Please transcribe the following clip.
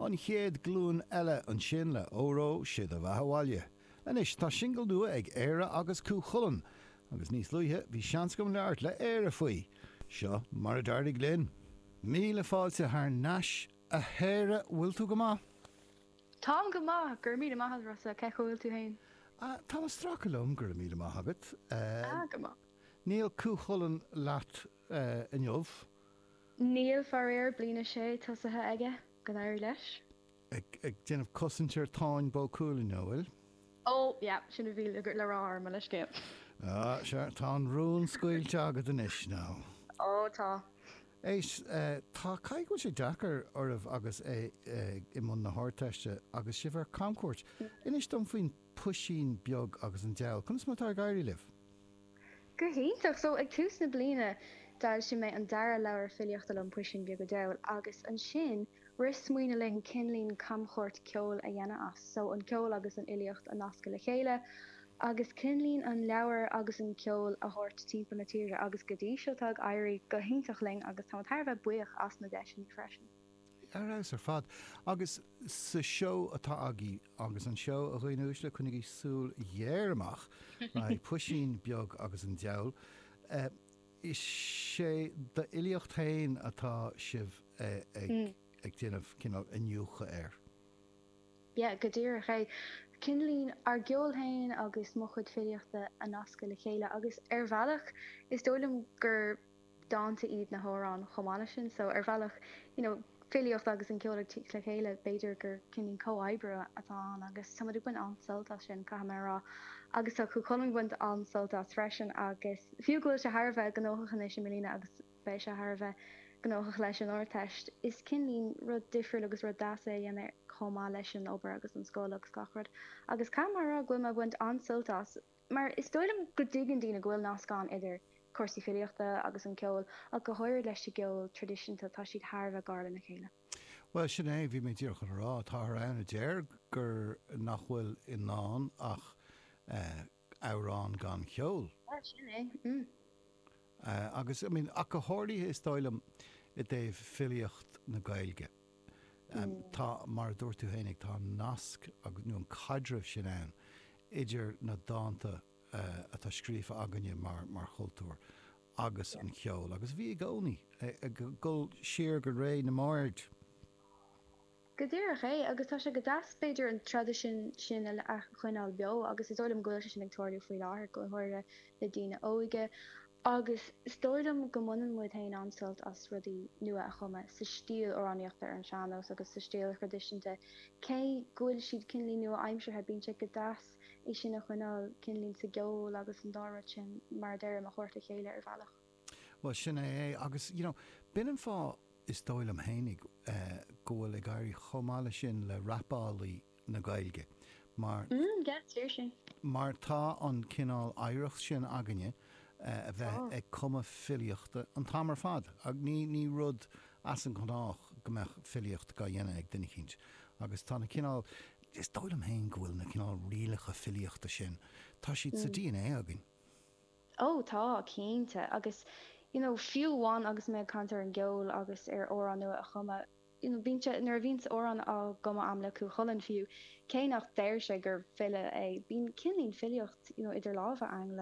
An chéad glúin eile ansin le Óró 'sé do bheatha 'bhaile. Anois tá singil nua ag Éire agus Cú Chulainn agus níos luaithe bhí seans agam labhairt le Éire faoi. Seo mar a d'éirigh linn. Míle fáilte thar n-ais a Éire, bhfuil tú go maith? Táim go maith, go raibh míle maith agat Rossa, cén chaoi a bhfuil tú féin? Ah, táim ag stracadh liom, go raibh míle maith agat. Ah, go maith. Níl Cú Chulainn leat inniu. Níl, faraor. Bliain a sé tosaithe aige. Go n-éirí leis. Ag déanamh cosaint ar Táin Bó Cuailgne, an bhfuil? Ó, yea, sin a bhí le rá agam, mo leithscéal. Ó, sea, tá an rún scaoilte agad anois, now. Ó, tá. Éist, tá, caithfidh go bhfuil sé deacair oraibh agus é i mbun na hArdteiste agus sibh ar camchuairt. Inis dom faoin puisín beag agus an deabhal. Conas mar atá ag éirí libh? Go hiontach! So ag tús na bliana d'fhoilsigh mé an dara leabhar filíochta liom, Puisín Beag a' Deabhail, agus ansin rith smaoineamh linn cineáilín camchuairt ceoil a dhéanamh as. So an ceol agus an fhilíocht a nascadh le chéile agus cineáilín an leabhar agus an ceol a thabhairt timpeall na tíre. Agus go dtí seo tá ag éirí go hiontach linn agus táimid thar a bheith buíoch as na deiseanna freisin. Ar fheabhas ar fad. Agus sa seó atá agaibh, agus an seó, a dhaoine uaisle, coinnigí súil ghéar amach, beidh Puisín Beag agus an Deabhal, is é d'fhilíocht féin atá sibh ag déanamh cineál iniúchadh air. Yeah, go díreach é. Cineáilín ár gceol féin agus mo chuid filíochta a nascadh le chéile agus ar bhealach is dóigh liom gur. dánta iad na h-amhráin chomh maith leis sin so ar bhealach you know filíocht agus an ceol ag tíocht le chéile b'fhéidir gur cineáilín comhoibriú atá ann agus tá muid ag baint an-sult as sin caithfidh mé a rá agus tá Cú Chulainn ag baint an-sult as freisin agus fiú go bhfuil sé thar a bheith gnóthach anois i mbliana agus beidh sé thar a bheith gnóthach leis an Ardteist is cineáilín rud difriúil agus rud deas é a dhéanamh chomh maith leis an obair agus an scoil agus gach rud agus caithfidh mé a rá go bhfuil mé ag baint an-sult as. Mar is dóigh liom go dtuigeann daoine go bhfuil nasc ann idir cúrsaí filíochta agus an ceol, ach go háirid leis an gceol tradisiúnta, tá siad thar a bheith gar lena chéile. Bhuel, sin é, bhí mé díreach chun a rá. Táthar ann a deir gur, nach bhfuil i ndán ach amhrán gan cheol. Bhuel, sin é, mm. Agus, I mean, ach go háirithe is dóigh liom i dtaobh filíocht na Gaeilge. Tá, mar a dúirt tú féinig, tá an nasc nó an caidreamh sin ann idir na dánta atá scríofa againne mar chultúr agus an ceol agus bhí i gcónaí, ag dul siar go ré na mbard. Go díreach é, agus tá sé go deas b'fhéidir an traidisiún sin a choinneáil beo agus is dóigh liom go bhfuil sé sin ag tarlú faoi láthair, go háirithe le daoine óige agus is dóigh liom go mbaineann muid féin an-sult as rudaí nua a chumadh sa stíl amhránaíochta ar an sean-nós agus sa stíl thraidisiúnta cé go bhfuil siad cineáilín nua-aimseartha, bíonn sé go deas é sin a choinneáil cineáilín sa gceol agus an dá rud sin mar a deir muid a thabhairt le chéile ar bhealach. Bhuel, sin é é. Agus, you know, b'in an fáth, is dóigh liom fhéinig, go bhfuil ag éirí chomh maith leis sin le rapálaí na Gaeilge. Mar. Mm, yeah, seriously. Mar tá an cineál oidhreacht sin againne, a bheith Tá. ag cumadh filíochta an t-am ar fad. Ach ní, ní rud as an ngnách go mbeadh filíocht dhá dhéanamh ag duine eicínt. Agus tá na cineál, is dóigh liom féin go bhfuil na cineál rialacha filíochta sin, tá siad sa Mm. dna againn. Ó, tá, cinnte. Agus, you know, fiú amháin agus mé ag caint ar an gceol agus ar amhráin nua a chumadh, you know, bíonn sé, nuair a bhíonns amhráin á gcumadh a'm le Cú Chulainn fiú, cé nach deir sé gur file é, bíonn cineáilín filíocht, you know, idir lámha a'm.